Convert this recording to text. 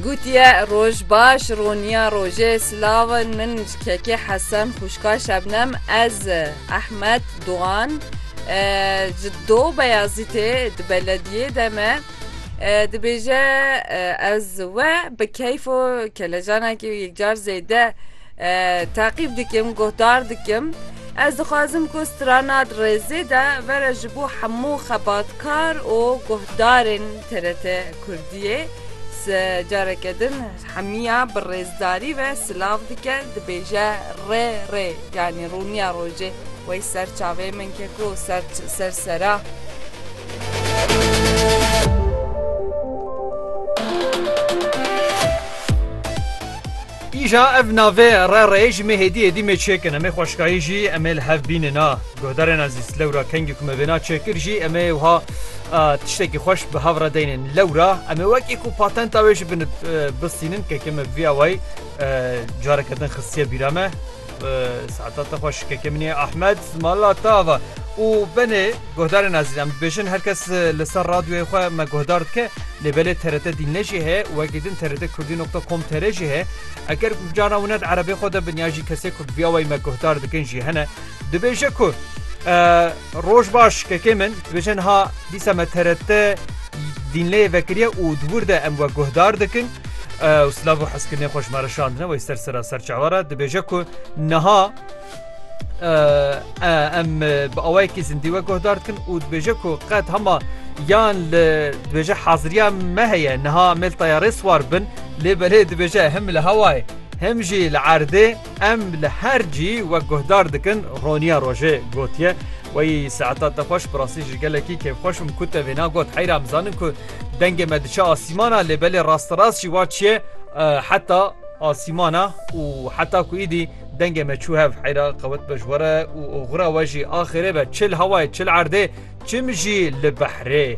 Gotiye, Roj baş, roniya rojê, silav in, min ji kekê Hesen, xwişka Şebnem, ez Ehmed Dogan, ji Do Beyazîtê di belediyê de me, dibêje ez we bi keyf û kelecanekî û yekcar zêde, Teqîb dikim, guhdar dikim. Ez dixwazim ku strana di rêzê de vere ji bo hemû xebatkar û guhdarên TRT Kurdiyê. Careke din hemiya bi rêzdarî ve silav dike, dibêje rê rê yanî rûniya rojê wey ser çavê min ke ku ser ser sera. Îja ev navê re rê ji mê hêdî hêdî mê çêkin em ê xweşkayî jî em ê li hev bînin a guhdarên ezîz lewra kengî ku me vêna çêkir jî em ê wiha tiştekî xweş bi hev re deynên lewra em ê wekî ku patenta wê ji bin bistînin keke me bi vî awayî careke din xistiye bîra me. Saeta te xweş kekê min ê Ahmed mala te ava û benê guhdarên ezîn em dibêjin her kes li ser radyoyê xwe me guhdar dike lê belê TRT dînne jî heye wekî din TRT kurdî nokta com tr jî heye eger ku cana wina di erebê xwe de bin ya jî kesê ku bi vîya wayî me guhdar dikin jî hene dibêje ku Roj baş kekê min, dibêje niha dîsa me TRT dînleyê vekiriye û di wir de em we guhdar dikin û silav û hezkirinê xwe ji me re şandine wey ser sera serçawa re dibêje ku niha em bi awayekî zindî we guhdar dikin û dibêje ku qet hema yan li dibêje haziriya me heye niha mêl tayarê swar bin lê belê dibêje him li hewayê him jî li erdê Em li her cî wek guhdar dikin Roniya Rojê gotiye, Wey saetan te xweş bi rastî ji gelekî kêfxweş bûm ku te vêna got. Heyr em zanin ku dengê me diçe asîmana lê belê rasterast jî wa çiye heta asîmana û heta ku îdî dengê me çû hev heyra qewet be ji we re û oxira we jî axêrê be çi li hewayê çi li erdê çim jî li behrê.